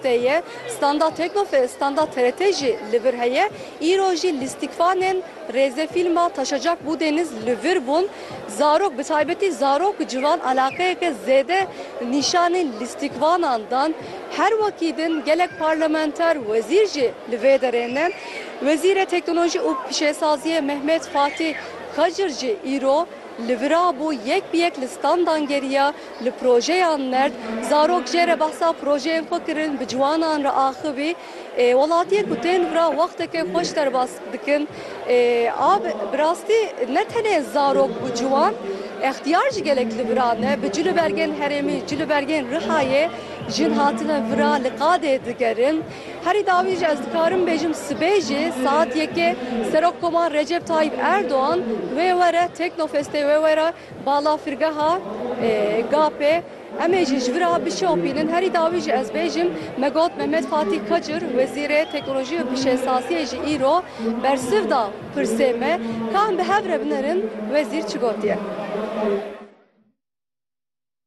Tê ye, standa Teknofe, standa TRT jî li vir heye. Îro jî lîstikvanên rêzê fîlma Taşacak bû Deniz li vir bûn. Zarok, bi taybetî zarok û civan eleqeyeke zêde nîşanî lîstikvanan dan. Her wekî din gelek parlamenter, wezîr jî li vê derê ne. Wezîrê Teknolojî û Pişêsaziyê Mehmet Fatîh Kacir jî îro li vira bû, yek bi yek li standan geriya. Li projeya Merd zarok jê re behsa projeyên xwe kirin, bi ciwanan re axivî. Welatiyê ku tên vira wexteke xweş derbas dikin. A bi rastî ne tenê zarok û ciwan, extiyar jî gelek li vira ne. Bi cûlûbergên herêmî, cûlûbergên Rihayê jin hatine vira li qadê digerin. Herî dawî jî ez dikarim bêjim sibê jî saet yekê Serokkomar Recep Tayyîp Erdogan wê were Teknofestê wê were. Balafirgeha GAP'ê em ê jî ji vir a bişopînin. Herî dawî jî ez bêjim, me got Mehmet Fatîh Kacur, Wezîrê Teknolojî û Pişesaziyê jî îro bersiv da pirsê me ka em bi hev re binerin, wezîr çi gotiye.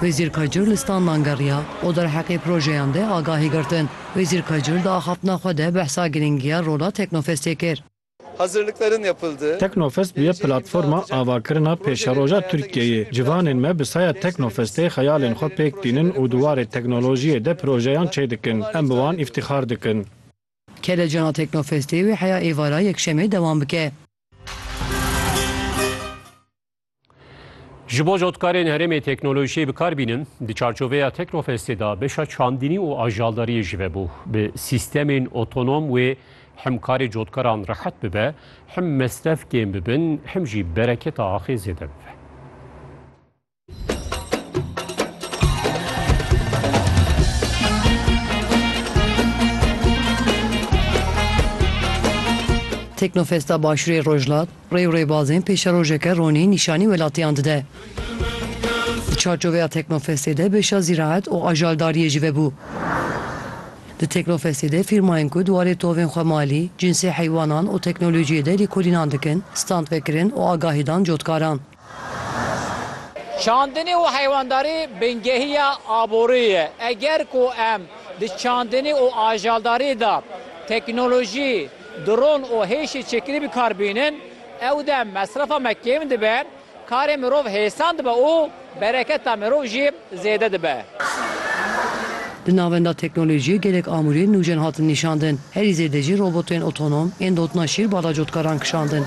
Wezîr Kacur li standan geriya û derheqê projeyan de agahî girtin. Wezîr Kacur di axaftina xwe de behsa girîngiya rola Teknofestê kir. Teknofest bûye platforma avakirina pêşeroja Tirkiyeyê. Civanên me bi saya Teknofestê xeyalên xwe pêk tînin û di warê teknolojiyê de projeyan çêdikin. Em bi wan îftixar dikin. Kelecana Teknofestê wê heya êvara Yekşemê dewam bike. Ji bo cotkarên herêmê teknolojiyê bi kar bînin, di çarçoveya Teknofestê de beşa çandinî û ajaldariyê ji ve bû. Bi sîstemên otonom wê him karê cotkaran rehet bibe, him mesref kêm bibin, him jî bereketa axê zêde bibe. Teknofesta Başûrê Rojhilat, rê û rêbazên pêşerojeke ronî nîşanî welatiyan dide. Di çarçoveya teknofestê de bêşa zîraet û ajaldariyê jî vebû. Di teknofestê de fîrmayên ku di warê tovên xwemalî, cinsê heywanan û teknolojiyê de lêkolînan dikin, stand vekirin û agahîdan cotkaran. Çandinî û heywandarî bingehî ya aborî ye. Eger ku em di çandinî û ajaldarî de teknolojî, dron û hêşê çêkirî bi kar bînin, ew dem mesrefa me kêm dibe, karê mirov hêsan dibe û bereketa mirov jî zêde dibe. Di navenda teknolojiyê gelek amûrên nûjen hatin nîşandin. Herî zêde jî robotên otonom ên dotina şîr bala cotkaran kişandin.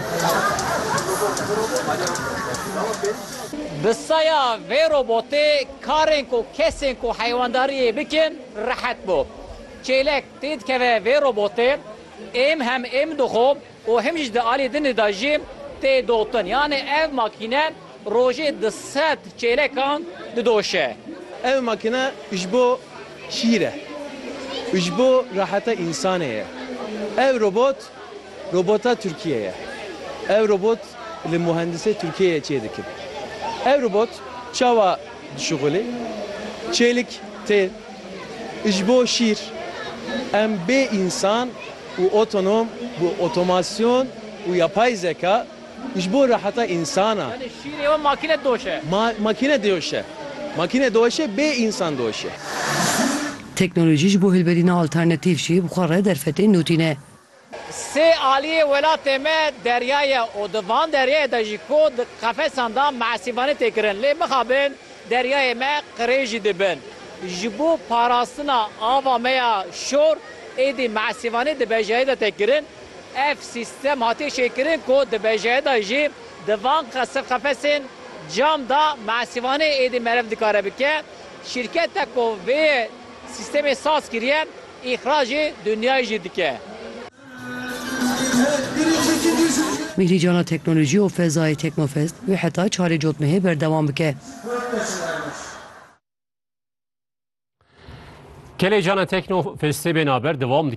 Bi saya vê robotê karên ku kesên ku heywandariyê bikin rehet bû. Çêlek tê dikeve vê robotê, êm hem êm dixwe û him jî di aliyê din de jî tê dotin. Yanê ev makîne rojê du sed çêlekan didoşe. Ev makîne ji bo şîr e û ji bo raheta însanê ye. Ev robot robota Tirkiyê ye. Ev robot li muhendisê Tirkiyeyê çê dikin. Ev robot çawa dişuxulê? Çêlik tê. Ji bo şîr, em bê însan û otonom bi otomasyon û yapay zeka ji bo raheta însan a. Yanî şîrê we makîne doş e. Ma, makîne doş e. Makîne doş e, bê însan doş e. Teknolojî ji bo hilberîna alternatîf jî bi xwe re derfetên nûtîne. Sê aliyê welatê me derya ye û di van deryayê de jî ku di qefesan de masîvanê tê kirin. Lê mixabin deryayê me qirê jî dibin. Ji bo parastina ava me ya şor êdî masîvanê di bejayê de tê kirin. Ev sîstem hatiye çêkirin ku di bejayê de jî di van qesirqefesên cam de masîvanê êdî merev dikare bike. Şîrkete ku vê sîstemê saz kiriye, Îxracê dinyayê jî dike. Mîhrîcana Teknolojî û Fezayê Teknofest wê heta çarê cotmehê berdewam bike. Kelecan a Teknofestê bê naber dewam dike.